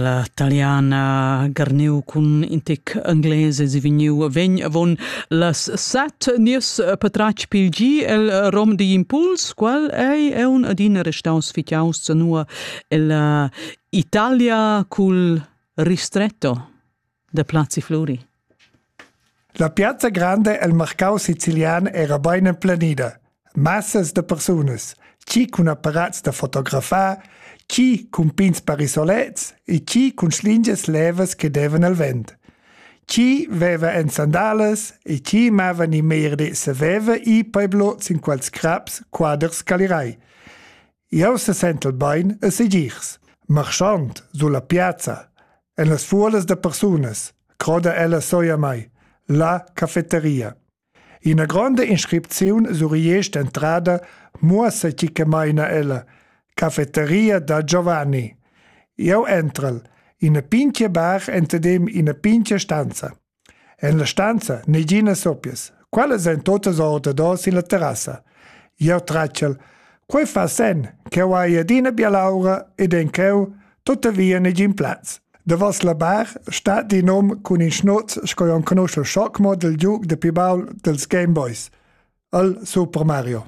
La taliana garniu cun in tic ingles e vegniu vegn avon las set nies patratg pil gi el rom digl impuls, qual ei un adina restaus fitaus zanua ella Italia cul ristretto. da Plazi Fluri. La piazza grande el marcau sicilian era bein emplenida. Massas de persunas, ci cun apparats da fotografar, ci cun pins parisolets e ci cun slinges levas che devan al vent. Ci veva en sandalas e ci mava ni meir de saveva i peblo sin quals craps quaders calirai. Jau sesentel bain e segirs, marschand sulla piazza, en las fuolas da persunas, croda ella soi a mai, la cafeteria. Ina gronda inscripziun sur entrada muossa chi che maina ella, cafeteria da Giovanni. Jau entral, ina pinchia bar entadem ina pinchia stanza. En la stanza neginas sopias. Quellas ein totas ordador sin la terrassa. Jeu tratschel. Quei fa senn ch'jeu hai adina bialaura ed en cheu tuttavia negin plaz. Davos la bar stat in hom cun in schnoz sco enconuschel schockmodel giug de pi baul dels Game Boys, el Super Mario.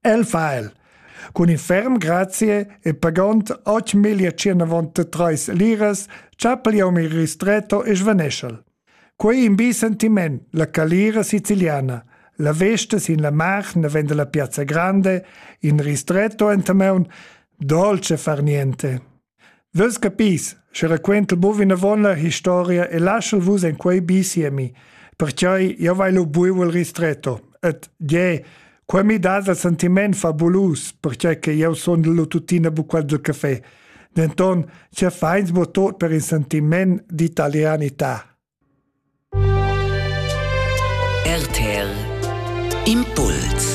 El fa el. Cun in ferm grazie e pagond 8.193 liras chapel iom il ristretto e svaneschel. Quei in bi sentiment, la calira siciliana. La vesta sin la mar ne vende la piazza grande, in ristretto entameun, dolce far niente. Vus capis, sche raquentel buc vinavon la historia e laschel vus en quei bi siemi, pertgei jeu vai lu buc el ristretto. Et, gie, quei mi dat in sentiment fabulus, pertgei che jeu sundel lu tuttina buc quasi caffè. Denton, se feins bu tot per in sentiment d'italianità. RTL Impuls